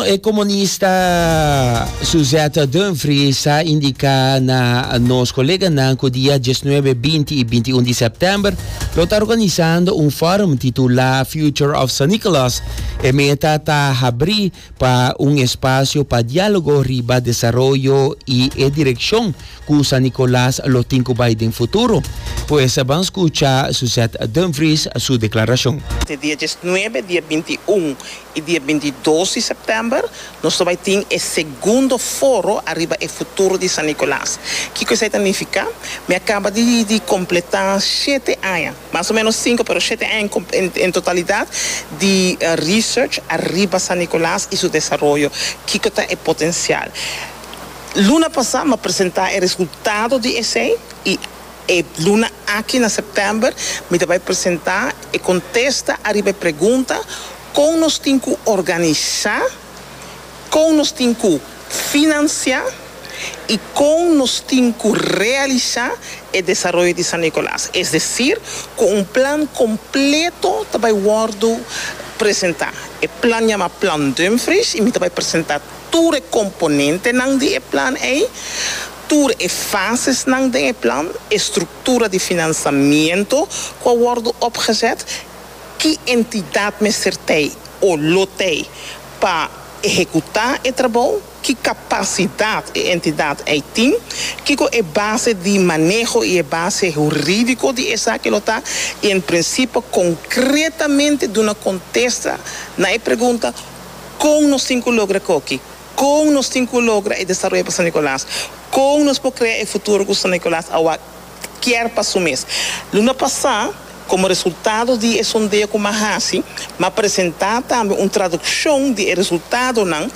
E comunista Suzette Dumfries a indica na nos coleganan cu dia dieznuebe, binti y bintiun di september lo ta organisando un forum titula Future of San Nicolas. E meta ta habri pa un espacio pa dialogo riba desaroyo y e direccion Cu San Nicolas lo tin cu bay den futuro? Pues ban scucha Suzette Dumfries su declaracion. Te dia diesnuebe, dia binti un y dia binti dos di september nos lo bay tin e segundo foro ariba e futuro di San Nicolas. Kico esai ta nifica? Mi a caba di completa shete aña, mas o menos cinco pero shete aña en totalidad, di research ariba San Nicolas y su desaroyo. Kico ta e potencial? Luna pasá mi a presentá e resultado di esei i e luna aki na sèptèmber mi ta bai presentá e kontesta ariba e pregunta kon nos tin ku organisá, kon nos tin ku finansiá i kon nos tin ku realisá e desaroyo di San Nikolas. Es desir ku un plan kompleto ta bai wòrdu presentá. E plan yama Plan Dumfries i mi ta bai presentá. tur e komponentenan di e plan ei, tur e fasesnan den e plan, e struktura di finansamiento ku a wòrdu opgezet, ki entidat mester t'ei o lo t'ei pa ehekutá e trabou, ki kapasidat e entidat ei tin, kiko e base di maneho i e base hurídiko di esaki lo ta, i en prinsipio konkretamente duna kontesta na e pregunta, Kon nos tin ku logra koki? Kon nos tin ku logra e desaroyo pa San Nikolas? Kon nos por krea e futuro ku San Nikolas a wak kier pa su mes? Luna pasá, komo resultado di e sondeo ku m'a hasi, m'a presentá tambe un tradukshon di e resultadonan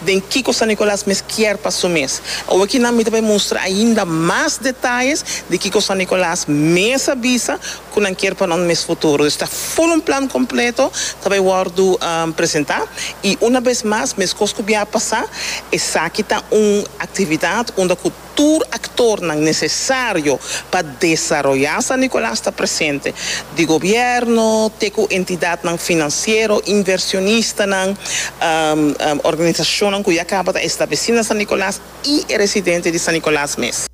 den kiko San Nikolas mes kier pa su mes. Awokinan mi ta bai mustra ainda mas detayes di kiko San Nikolas mes a bisa, cu nan kier pa nan mes futuro. Dus ta full un plan completo ta bay wordo presenta. Y una bes mas, mescos cu bia a pasa, esaki ta un actividad unda cu tur actornan necesario pa desaroya San Nicolas ta presente, di gobierno te cu entidadnan financiero, inversionistanan, organisacionnan cu ya caba ta estableci na San Nicolas y e residente di San Nicolas mes.